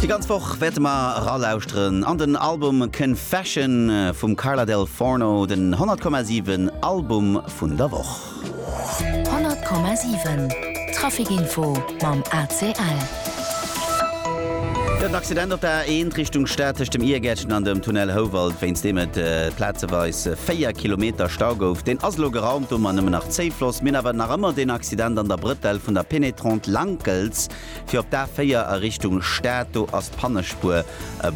Déi ganz Woch wäerte mer eralauschteren an den Album Confession vum Carla Del Forno, den 100,7 Album vun der Woch. 100,7 Traficinfo mam ACL. Den Accident op der A1 Richtung Stad tëscht dem Iergärtchen an dem Tunnel Houwald, wéinst deem et plazeweis 4 Kilometer Stau gouf, deen ass elo geraumt. Domat nëmmen nach Zéifloss. Mir hunn awer nach ëmmer den Accident an der Brëtell vun der Pénétrante Gëlz, fir op d'A 4 a Richtung Stad. Do ass d'Pannespuer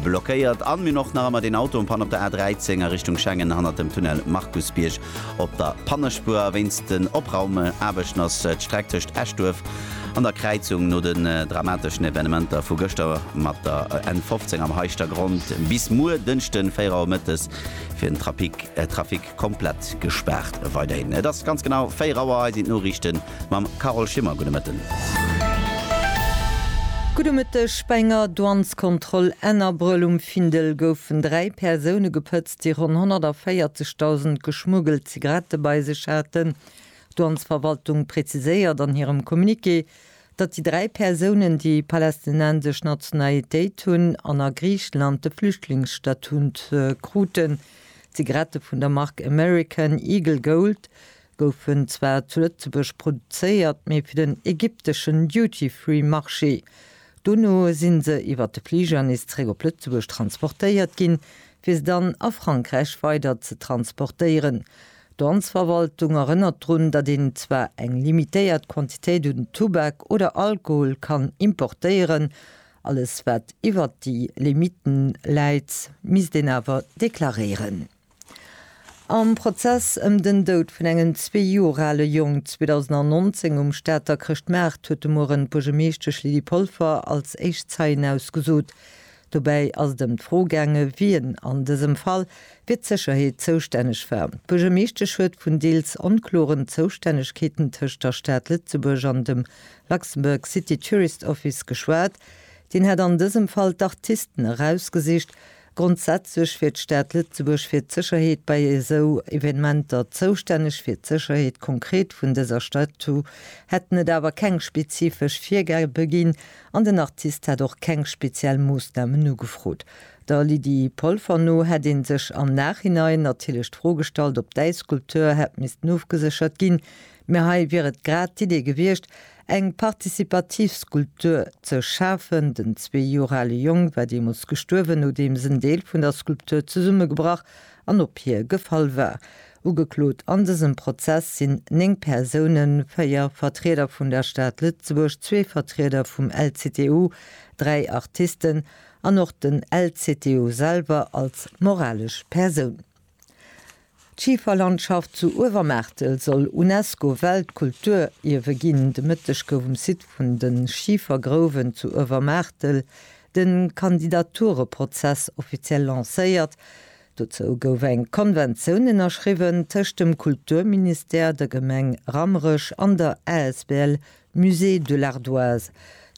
blockéiert. An mir hunn och nach ëmmer deen Auto en Panne op der A 13 a Richtung Schengen hannert dem Tunnel Markusbierg op der Pannespuer. A wéinst den Opraumaarbechten ass d'Streck tëscht Eschduerf an der Kräizung no den dramateschen Evenementer vu gëschter mat der N 15 am Heischtergronn bis muer Dënschden 4 Auer mëttes fir den Trafic Komplett gespaart weiderhin. Et ass ganz genau 4 Auer, hei sinn d'Noriichte mam Carole Schimmer. Gudde Mëtten. Gudde Mëtteg. Bei enger Douaneskontroll Ennerbruel um Findel goufen 3 Persoune gepëtzt, déi ronn 140.000 geschmuggelt Zigarette bei sech haten. D'Douanesverwaltung preziséiert an hirem Communiqué, datt déi dräi Persounen, déi palästinensesch Nationalitéit hunn an a Griichenland de Flüchtlingsstatut kruten, d'Zigarette vun der Mark American Eagle Gold goufen zwar zu Lëtzebuerg produzéiert, mee fir den ägypteschen Duty-Free-Marché. Dono si se iwwer de Fliger nees zeréck op Lëtzebuerg transportéiert ginn, fir se dann a Frankräich weider ze transportéieren. D'Danzverwaltung erënnert drun, datt een zwar eng limitéiert Quantitéit un Tubak oder Alkohol kann importéieren, alles wat iwwert déi Limite läit, misst een awer deklaréieren. Am Prozess ëm den Doud vun engem zwee Joer ale Jong 2019 um Stater Chrëschtmaart huet de Mueren d'Buergermeeschtesch Lydie Polfer als éischt Zeien ausgesot. Dobäi ass et ëm d'Fro gaange wien an dësem Fall fir d'Sécherheet zoustänneg war. D'Buergermeeschtesch huet vun deels onkloren Zoustännegkeeten tëscht der Stad Lëtzebuerg an dem Luxembourg City Tourist Office geschwat. Deen hätt an dësem Fall d'Artisten erausgesicht. Grondsätzlech wier d'Stad Lëtzebuerg fir d'Sécherheet bei esou Evenementer zoustänneg. Fir d'Sécherheet konkret vun dëser Statue hätten et awer keng spezifesch Virgabe ginn, An den Artist hätt och keng speziell Moossnamen ugefrot. Der Lydie Polfer no hätt ee sech am Nachhinein natierlech d'Fro gestallt, ob däi Skulpteur hätt missten ofgeséchert ginn. Mä hei wier et grad d'Idee gewiescht, eng participativ Skulptur ze schafen. Den zwee Joer ale Jong war deemools gestuerwen, nodeems en Deel vun der Skulptur zesummegebrach an op hie gefall war. Ugeklot an dësem Prozess sinn néng Persounen, véier Vertrieder vun der Stad Lëtzebuerg, zwee Vertrieder vum LCTU, dräi Artisten an och den LCTU selwer als moralesch Persoun. D'Schiferlandschaft zu Uewermaartel soll UNESCO-Weltkulturierwe ginn. De Mëtteg gouf um Site vun de Schifergrouwen zu Uewermaartel de Kandidatureprozess offiziell lancéiert. Dozou gouf eng Konventioun ënnerschriwwen tëscht dem Kulturministère, der Gemeng Rammerech an der asbl Musée de l'Ardoise.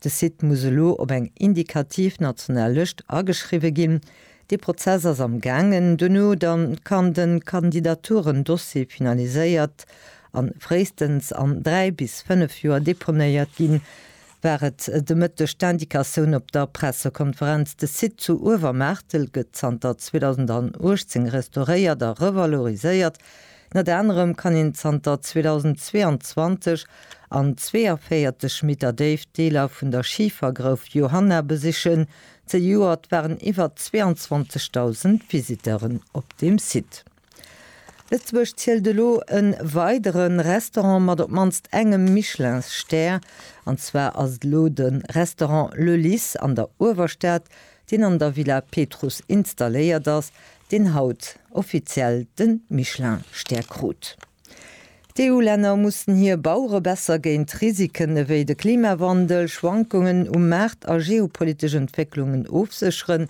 De Site muss elo op eng indikativ national Lëscht ageschriwwe ginn. Dee Prozess ass am gaangen. Duerno da kann de Kandidaturen-Dossier finaliséiert an fréistens an dräi bis fënnef Joer deponéiert ginn. war et de Mëtteg d'Indicatioun op der Pressekonferenz. De Site zu Uewermaartel gëtt zanter 2018 restauréiert a revaloriséiert. Ënnert anerem kann een zanter 2022 an 42 Meter Déift Deeler vun der Schifergrouf Johanna besichen. Zejoert waren iwwer 22.000 Visiteuren op dem Site. Lëtzebuerg zielt elo e weidere Restaurant mat op d'mannst engem Michelinsstär. An zwar ass et elo de Restaurant Le Lys an der Uewerstad, deen an der Villa Petrus installéiert ass, deen haut offiziell de Michelin-Stär krut. D'EU-Länner mussen hir Bauere besser géint Risiken ewéi de Klimawandel, Schwankungen um Maart a geopolitesch Entwécklungen ofsécheren.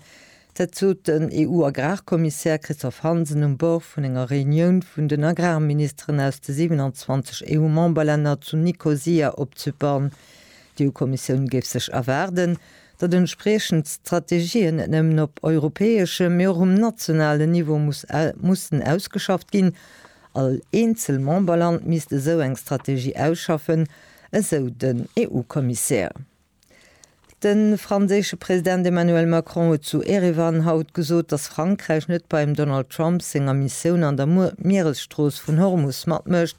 Dat sot den EU-Agrarkommissär Christophe Hansen um Bord vun enger Reunioun vun den Agrarministeren aus de 27 EU-Memberlänner zu Nikosia op Zypern. D'EU-Kommissioun géif sech erwaarden, datt entspriechend d'Strategien net nëmmen op europäeschem, mee och um nationalen Niveau mussen ausgeschafft ginn. All eenzel Memberland misst esou eng Strategie ausschaffen, esou den EU-Kommissär. De franséische President Emmanuel Macron huet zu Erevan haut gesot, datt Frankräich net beim Donald Trump senger Missioun an der Mieresstrooss vun Hormus matmécht,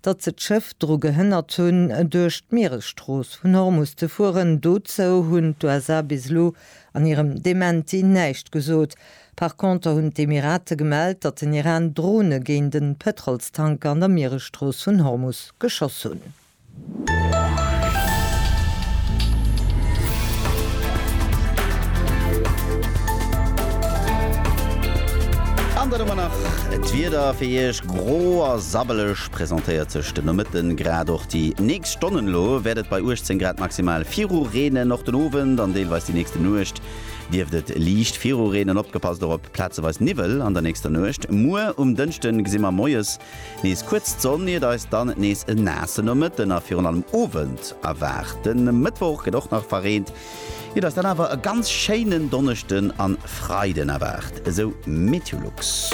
datt se d'Schëff dru gehënnert hunn, duerch d'Mieresstrooss vun Hormus ze fueren. Dozou hunn d'USA bis elo an hirem Dementi näischt gesot. Par conter hunn d'Emirate gemellt, datt den Iran Drone géint e Pëtrolstanker an der Mieresstrooss vun Hormus geschoss hunn. An dann hu mer nach d'Wieder fir Iech. Gro a sabbeleg presentéiert sech de Nomëtten, grad och déi nächst Stonnen. Elo wäert et bei 18 Grad maximal viru reenen. Och den Owend an deelweis déi nächste Nuecht dierft et liicht viru reenen. Opgepasst och op plazeweis Niwwel an der nächster Nuecht. Muer um Dënschde gesi mer moies nees kuerz d'Sonn, iert eis dann nees e naasse Nomëtten a virun allem Owend erwaart. De Mëttwoch gëtt och nach verreent, Et ass dann awer e ganz schéinen Donneschden an Freiden erwaart, esou Meteolux.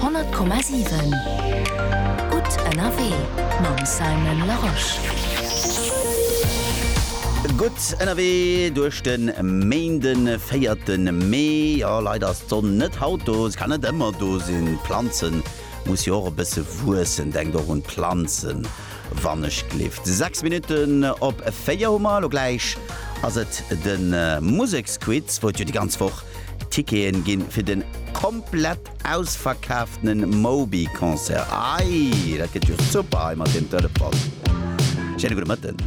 100,7 gutt ënnerwee mam Simon Larosche. Gutt ënnerwee duerch de Méinde 4 Mee. Jo leider ass d'Sonn net haut do, se kann net ëmmer do sinn. D'Planzen musse jo och e bësse wuessen, denkt och un d'Planzen. Wann ech gleeft 6 Minutten op 4 hu mer. Lo gläich ass et de Museksquiz, wou et jo déi ganz Woch Ticketen ginn fir den komplett ausverkaaftene Moby Concert. Ei, dat gëtt jo super hei mat deem Telefon. Schéine gudde Mëtten.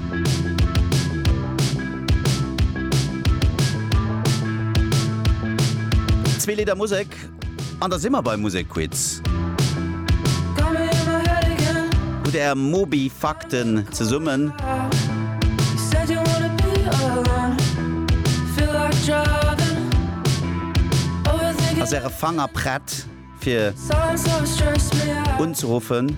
Zwee Lidder Musek An da si mer beim Musekquiz. Hutt Är Moby Fakten zesummen? Ass Äre Fanger prett fir unzeruffen?